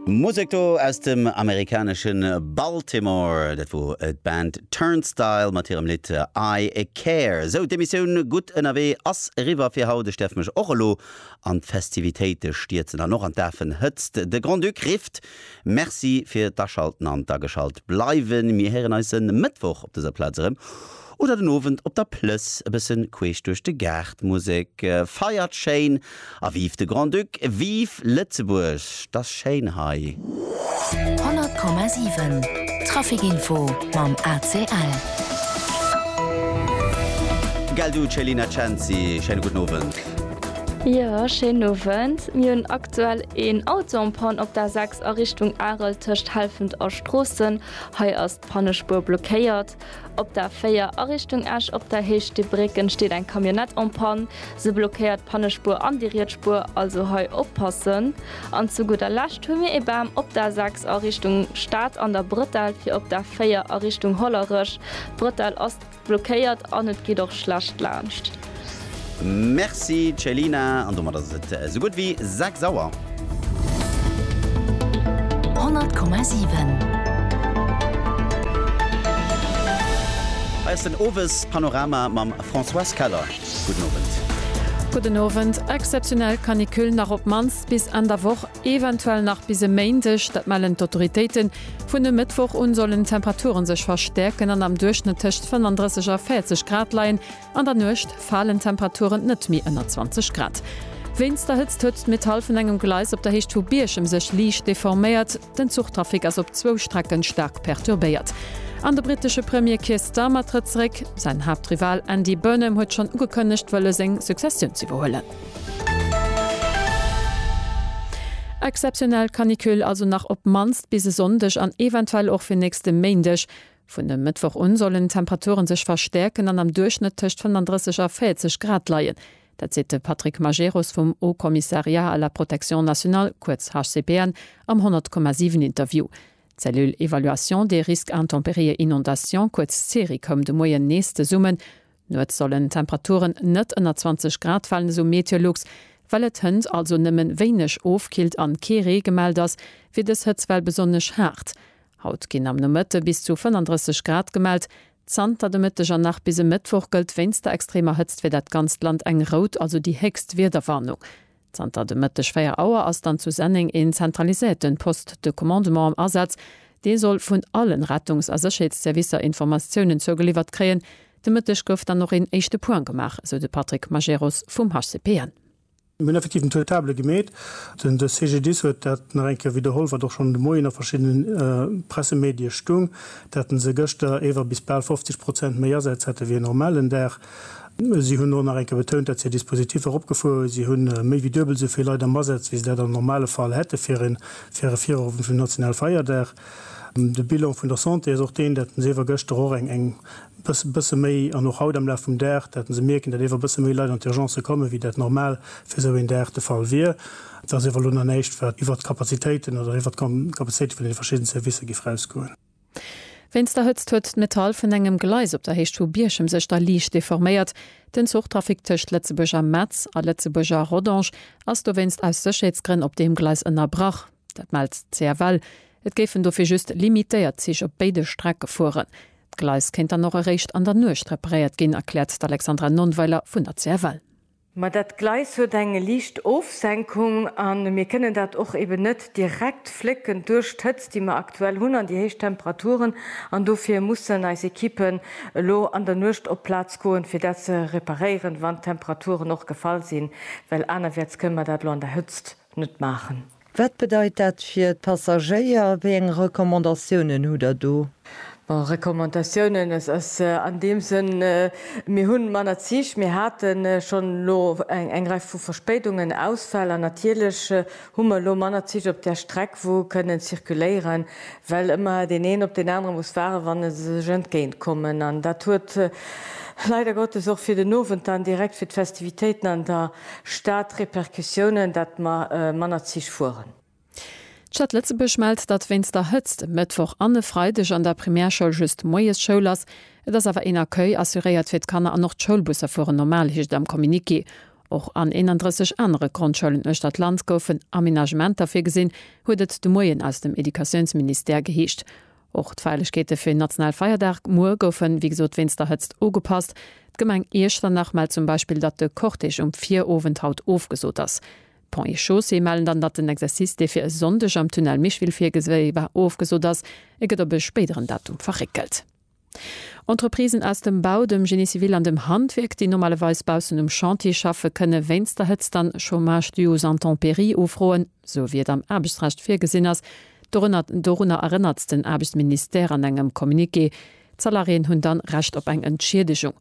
Musek do aus dem amerikanesche Baltimore, dat wor d'Band Turnstile mat hirem Lidd I Care. Sou, d'Emissioun Gutt ënnerwee ass eriwwer fir haut. Ech däerf mech och elo an d'Festivitéite stierzen an och an d'Afenhëtzt. De Grand-Duc rifft. Merci fir d'Aschalten an d'Ageschalt bleiwen. Mir héieren eis e Mëttwoch op dëser Plaz erëm. Oder den Owend op der Plëss, e bëssen queesch duerch de Gaart, Musek, feiert schéin a vive de Grand-Duc, vive Lëtzebuerg, 't ass schéin hei. 100,7 Traficinfo mam ACL. Gell du Céline Cenci, schéine gudden Owend. Jo, schéinen Owend. Mir hunn aktuell een Auto en panne op der 6 a Richtung Arel tëscht Helfent a Stroossen. Hei ass d'Pannespuer blockéiert. Op der 4 a Richtung Esch op der Héicht de Brécken steet eng Camionnette en panne. Se blockéiert d'Pannespuer an déi riets Spuer, also hei oppassen. An zu gudder Lescht hu mir ee Bam op der 6 a Richtung Stad an der Brëttel fir op der 4 a Richtung Hollerech. D'Brëttel ass blockéiert an et geet och schlecht laanscht. Merci Céline, an domat ass et esou gutt wéi 6 Auer. 100,7. Hei ass den Owespanorama mam Françoise Keller. Gudden Owend. Gudden Owend. Exzeptionell Canicule nach op d'mannst bis Enn der Woch, eventuell nach bis e Méindeg, dat mellen d'Autoritéiten. Vun e Mëttwoch un sollen d'Temperature sech verstäerken an am Duerchschnëtt tëscht 35 a 40 Grad leien. An der Nuecht falen d'Temperaturen net méi ënner 20 Grad. Wéinst der Hëtzt huet d'Metall vun engem Gleis op der Héicht vu Bierchem sech liicht deforméiert. Den Zuchtrafic ass op zwou Strecke staark perturbéiert. An de brittesche Premier Keir Starmer trëtt zeréck. Säin Haaptrival Andy Burnham huet schonn ugekënnegt, wëlle seng Successioun z'iwwerhuelen. Exzeptionell Canicule also nach op d'mannst bis e Sonndeg an eventuell och fir nächste Méindeg. Vun e Mëttwoch un sollen d'Temperature sech verstäerken an am Duerchschnëtt tëscht 35 a 40 Grad leien. Dat seet de Patrick Majerus vum Haut Commissariat à la Protection Nationale, kuerz HCPN, am 100,7 Interview. D'Cellule Évaluation des Risques Intempéries et Inondations, kuerz CERI, koum de Moien nees zesummen. Nuets sollen d'Temperaturen net ënner 20 Grad falen, esou MeteoLux. Well et hënt also nëmmen wéineg ofkillt an kee Ree gemellt ass, wier dës Hëtzwell besonnesch haart. Haut ginn am Nomëtte bis zu 35 Grad gemellt. Zanter de Mëtteg an nach bis e Mëttwoch gëllt wéinst der extremer Hëtzt fir dat ganzt Land eng rout, also déi héchst Wiederwarnung. Zanter de Mëtteg 4 Auer ass dann zu Senneng een zentraliséierten Poste de commandement am Asaz, dee soll vun allen Rettungs a Sécherheetsservicer Informatiounen zougeliwwert kréien. De Mëtteg gouf dann och een éischte Point gemaach, esou de Patrick Majerus vum HCPN. Mir hunn effektiv den Taux de table gemeet. Den de CGDIS huet dat nach eng Kéier widderholl, wat och schonn de Moien a verschiddene Pressemedie stoung, dat se gëschter ewer bis bal 50 Prozent méi Asätz hätte wéi en normalen Dag. Si hunn och nach eng Kéier betount, datt si hir Dispositiffer eropgefuer hunn. Si hu méi wéi duebel esou vill Leit am Asaz, wéi se dat am normale Fall hätte fir e Virowend vum nationale Feierdag. De Bilan vun der Santé ass och deen, datt se iewer gëschter och eng bësse méi an och haut am Laf vum Dag, datt se mierken, datt iewer bësse méi Leit an d'Urgencë kommen, wéi dat normal fir esou een Dag de Fall wier. Et ass iewer elo nach näischt, wat iwwert d'Kapazitéiten oder iwwert d'Kapazitéite vun deene verschidden Servicer géif erausgoen. Wéinst der Hëtzt huet d'Metall vun engem Gleis op der Héicht vu Bierchem sech da liicht deforméiert. Den Zuchtrafic tëscht Lëtzebuerg a Metz a Lëtzebuerg a Rodange ass dowéinst aus Sécherheetsgrënn op deem Gleis ënnerbrach. Dat mellt d'CFL. Et géifen dofir just limitéiert Zich op béide Strecke fueren. D'Gleis kéint dann och eréischt an der Nuecht reparéiert ginn, erkläert d'Alexandra Nonnweiler vun der CFL. Ma dat Gleis huet eng liicht Ofsenkung a mir kënnen dat och eben net direkt flécken duerch d'Hëtzt, déi mer aktuell hunn an déi héich Temperaturen. An dofir mussen eis Ekippen elo an der Nuecht op d'Plaz goen, fir dat ze reparéieren, wann d'Temperaturen och gefall sinn, well anerwäerts kënnen mer dat elo an der Hëtzt net maachen. Wat bedeit dat fir d'Passagéier? Wéi eng Recommandatiounen hutt der do? Bon, Recommandatiounen, et ass an deem Sënn, mir hu manner Zich, mir hate schonn elo eng Rei vu Verspéidungen, Ausfäll an natierlech hu mer elo manner Zich op där Streck, wou kënnen zirkuléieren, well ëmmer deen een op deen anere muss waarden, wann se sech entgéint kommen. An dat huet leider Gottes och fir den Owend dann direkt fir d'Festivitéiten an der. Stad Repercussiounen, datt mer manner Zich fueren. D'Stad Lëtzebuerg mellt, datt wéinst der Hëtzt e Mëttwoch an e Freideg an der Primärschoul just moies Schoul ass. Et ass awer een Accueil assuréiert fir d'Kanner an och d'Schoulbusser fueren normal, heescht et am Communiqué. Och an 31 anere Grondschoulen uechter d'Land goufen Amenagementer virgesinn, huet et de Moien aus dem Educatiounsministère geheescht. Och d'Feierlechkeete fir den nationale Feierdag muer goufen, wéi gesot, wéinst der Hëtzt ugepasst. D'Gemeng Iechternach mellt zum Beispill, datt de Cortège um Virowend haut ofgesot ass. D'Ponts et Chaussées mellen dann, datt den Exercice, dee fir e Sonndeg am Tunnel Micheville virgesi war, ofgesot ass. E gëtt op e spéideren Datum verréckelt. Entreprisen aus dem Bau, dem Génie civil an dem Handwierk, déi normalerweis baussen um Chantier schaffe, kënne wéinst der Hëtzt dann Chômage dû aux intempéries ufroen. sou wéi et am Aarbechtsrecht virgesinn ass, dorënner, dorunner erënnert den Aarbechtsministère an engem Communiqué. D'Salariéen hunn dann Recht op eng Entschiedegung.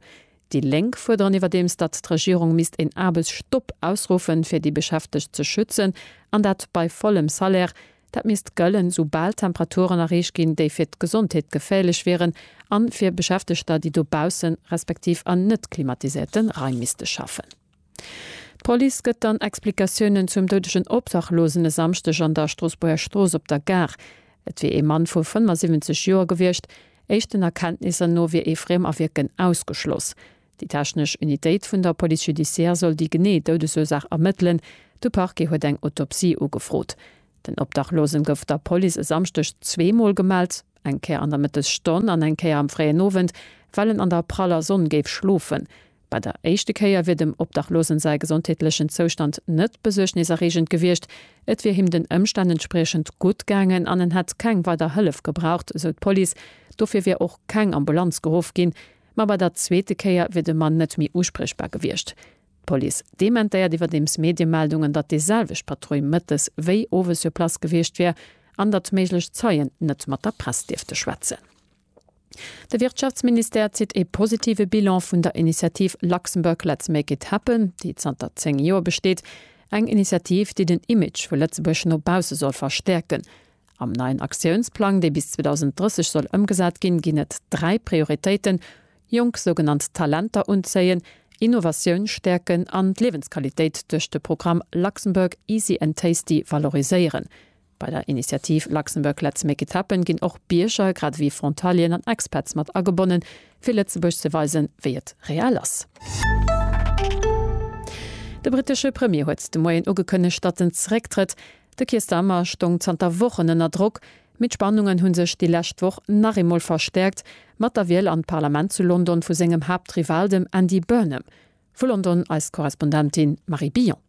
Déi Lénk fuerderen iwwerdeems, datt d'Regierung misst een Aarbechtsstopp ausruffen, fir déi Beschäftegt ze schützen, an dat bei vollem Salaire. Dat misst gëllen, sou bal Temperaturen erreecht ginn, déi fir d'Gesondheet geféierlech wieren, a fir Beschäftegter, déi dobaussen, respektiv an net klimatiséierte Raim misste schaffen. D'Police gëtt dann Explikatiounen zum doudegen Obdachlosen e Samschdeg an der Stroossbuerger Strooss op der Gare. Et wier ee Mann vu 75 Joer gewiescht. Éischten Erkenntnisser no wier ee Friemawierken ausgeschloss. Déi technesch Unitéit vun der Police judiciaire soll déi genee Doudesursaach ermëttelen. De Parquet huet eng Autopsie ugefrot. Den Obdachlosen gouf der Police e Samschdeg zwee Mol gemellt, eng Kéier an der Mëttesstonn an eng Kéier am fréien Owend, well en an der praller Sonn géif schlofen. Bei der éischte Kéier wier dem Obdachlose säi gesondheetlechen Zoustand net besuergneserreegend gewiescht, et wier him den Ëmstänn entspriechend gutt gaangen an en hätt keng weider Hëllef gebraucht, esou d'Police. Dofir wier och keng Ambulanz geruff ginn. Ma bei der zweete Kéier wier de Mann net méi uspriechbar gewiescht. D'Police dementéiert iwwerdeems Mediemeldungen, datt déi selwecht Patrull mëttes wéi owes sur place gewiescht wier an datt méiglech Zeien net mat der Press dierfte schwätzen. De Wirtschaftsministère zitt ee positive Bilan vun der Initiativ Luxembourg Let's Make It Happen, déi zanter 10 Joer besteet. Eng Initiativ, déi den Image vu Lëtzebuerg no bausse soll verstäerken. Am neien Aktiounsplang, dee bis 2030 soll ëmgesat ginn, ginn et dräi Prioritéiten, jonk sougenannt Talenter unzéien, Innovatioun stäerken an d'Liewensqualitéit duerch de Programm Luxembourg Easy and Tasty valoriséieren. Bei der Initiativ Luxembourg Let's Make It Happen ginn och Bierger, grad ewéi Frontalieren an Expats mat agebonnen, fir Lëtzebuerg ze weisen, wéi et real ass. De brittesche Premier huet de Moien ugekënnegt, datt en zerécktrëtt. De Keir Starmer stoung zanter Wochen ënner Drock, mee d'Spannungen hu sech déi lescht Woch nach eemol verstäerkt, mat der Wiel an d'Parlament zu London vu sengem Haaptrival, dem Andy Burnham. Vu London eis Korrespondentin Marie Billon.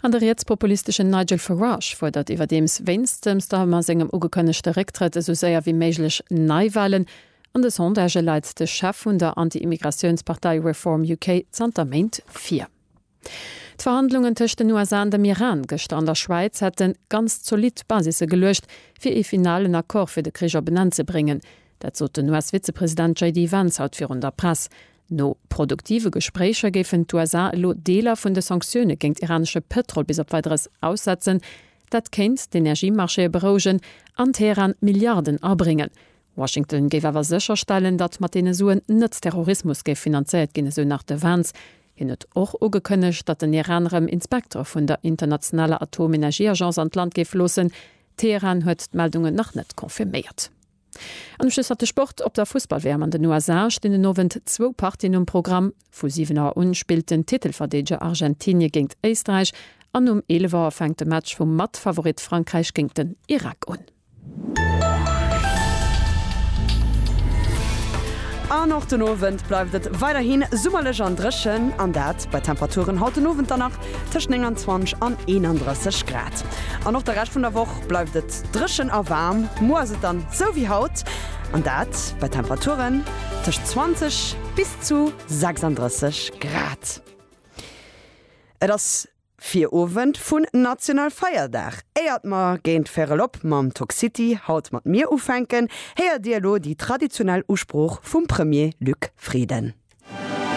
An de rietspopulisteschen Nigel Farage fuerdert iwwerdeems wéinst dem Starmer sengem ugekënnegte Récktrëtt esou séier wéi méiglech Neiwalen. An de Sondagë leit de Chef vun der Anti-Immigratiounspartei Reform UK zanter Méint vir. D'Verhandlungen tëscht den USA an dem Iran gëschter an der Schwäiz hätte ganz zolidd Basisse geluecht, fir ee finalen Accord fir de Krich op en Enn ze bréngen. Dat sot den US-Vizepresident JD Vance haut virun der Press. No produktive Gespréicher géifen d'USA elo Deeler vun de Sanktioune géint iranesche Pëtrol bis op Weideres aussetzen. Dat kéint d'Energiemarchéë berouegen an Teheran Milliarden abréngen. Washington géif awer sécherstellen, datt mat deene Suen net Terrorismus géif finanzéiert ginn, esou nach de Vance. Hien huet och ugekënnegt, datt den Iran erëm Inspektere vun der internationaler Atomenergieagence an d'Land géif loossen. Teheran huet d'Meldungen nach net confirméiert. An um Schluss hat de Sport. Op der Fussball-WM an den USA stinn den Owend zwou Partien um Programm. Vu 7 Auer un spillt den Titelverdeedeger Argentinie géint Éisträich an um 11 Auer fänkt de Match vum Matfavorit Frankräich géint den Irak un. An och den Owend bleift et weiderhin summerlech an dréchen, an dat bei Temperaturen haut den Owend dann nach tëscht 29 an 31 Grad. An och de Rescht vun der Woch bleift et. Dréchen a waarm, muer ass et dann sou wéi haut, an dat bei Temperaturen tëscht 20 bis zu 36 Grad. Et ass Virowend vun National Feierdag. Éiert mer géint véierel op mam Toxcity haut mat Mir ufänken, héiert Dir elo déi traditionell Usprooch vum Premier Luc Frieden.